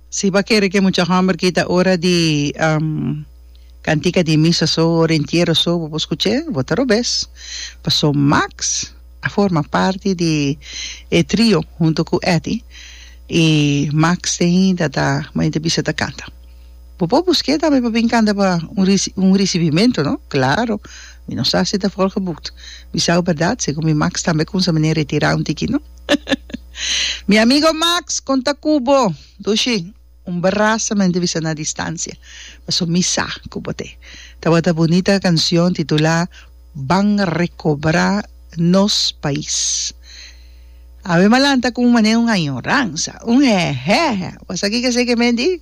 Si bo a kere ke mucha hòmber kita ora di kantika di misa so, ora di entiero so, bo por skuch'é, bo ta robes. Pasó Max a forma parti di e trio huntu ku Etty i Max te hinda ta bo hinda bisa ta kanta. Bo por busk'é tambe pa bin kanta pa un un risibimentu, no? Klaro, mi no sa si ta volgeboekt. Mi sa ku bèrdat, segun mi Max tambe a kumsa manera retirá un tiki, no? Mi amigo Max, con ta cu bo? Dushi, un brasa mente bisa na distancia, paso mi sa cu bo t'e tabata bunita cancion titula Ban recobra nos pais. Awe m'a lanta cu un mane un añoransa, un hehehe. Bo sa kico esey ke me di?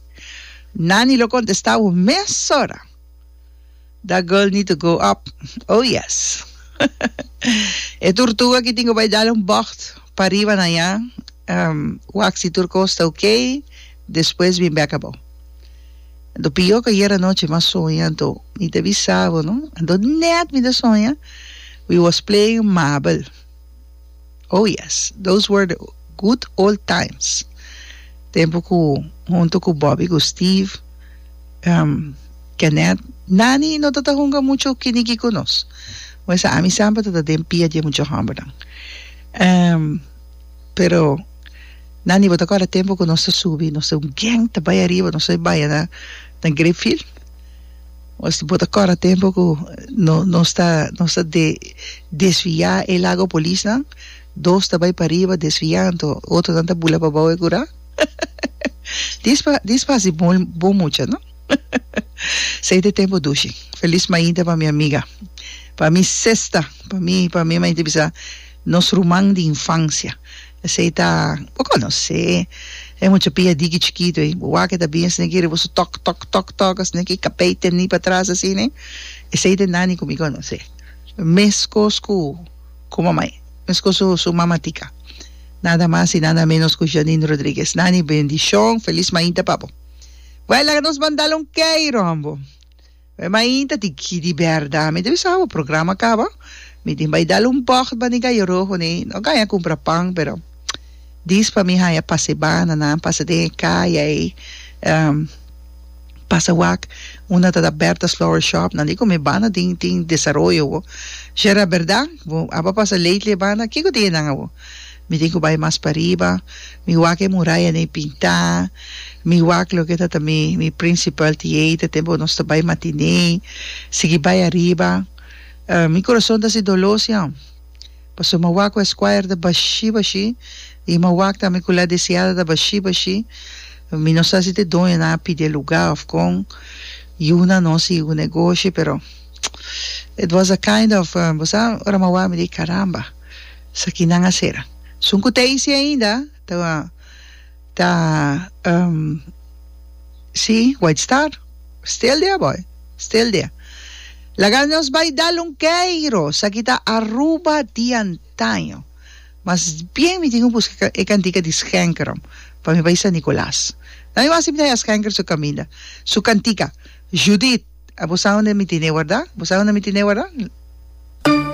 Nani lo contesta awe mesora. That girl need to grow up. Oh yes. E turtuga ki tin cu bay dal un bocht pariba na ya, wak si tur cos ta ok, despues bin bek abo. Anto pio cu ayer anochi mi a soña, anto mi ta bisa bo no, anto net mi ta soña we was playing mabel. Oh yes, those were the good old times, tempo ku huntu ku Bobby ku Steve, ehm, Kenneth, Nani no ta ta hunga muchu kiniki ku nos. Mester ami semper ta ta den pia di e muchu hòmbernan. Ehm, pero, Nani, bo ta kòrda tempo ku nos ta subi, nos ta un geng ta bai ariba, nos ta baya na Grapefield? Nos bo ta kòrda tempu ku nos ta nos ta desviá e lago polisnan? Dos ta bai pariba desviá anto otronan ta bula pa bou e kurá? Dis pa dis pa hasi bon bon mucha no Sei te tempu dushi Felis mainta pa mi amiga pa mi sesta pa mi pa mi mainta bisá nos ruman di infansia Esei ta, bo konosé e muchapia diki chikitu ei, bo wak e ta bien sne'ke riba su tok, tok, tok, tok, a sne'ke kapei tendí pa tras así ne? Esei ta e nani ku mi konosé. Meskos ku ku mamai, meskos su su mamatica. Nada mas i nada menos ku Janine Rodriguez. Nani, bendishon, felis mainta pa bo. Wèl laga nos mandal un kei rombo. Oe main ta di ki di berdad mi debe sa bo programa caba mi tin bay dal un bocht ba ni gallo rojo ni no gaña cumpra pan pero dis pa mi haya pasebana nan pasa den e caya ey pasa wak un a ta da Berta's flower shop nan di cu mi banda tin tin desaroyo bo shera berdad bo aba pasa lately e banda kico tin e nan awo. Mi tin cu bay mas pariba. Mi wak e muraya ney pinta. Mi wak loke ta ta mi mi principal theater tempo cu nos ta bay matinee. Sigui bay ariba. Mi corazon ta si dolo si an. Pasobra mi wak cu es choir ta bashi bashi. Y mi wak tambe cu La Deseada ta bashi bashi. Mi no sa si ta e doñonan a pide lugar of con. Yuna nos y yuna e goshi pero it was a kind of bo sa ora mi a wak mi di caramba. Sakinan a sera. Sun ku ta hisi ainda ta ta si White Star stil dia boy stil dia laga nos bai dal un keiro esaki ta Aruba di antaño mas bien mi tin ku buska e kantika di schenkerom pa mi bai San Nicolas nan mi wasi mi ta haña schenker su kaminda su kantika Judith a bo sa unda mi tine warda bo sa unda mi tine warda.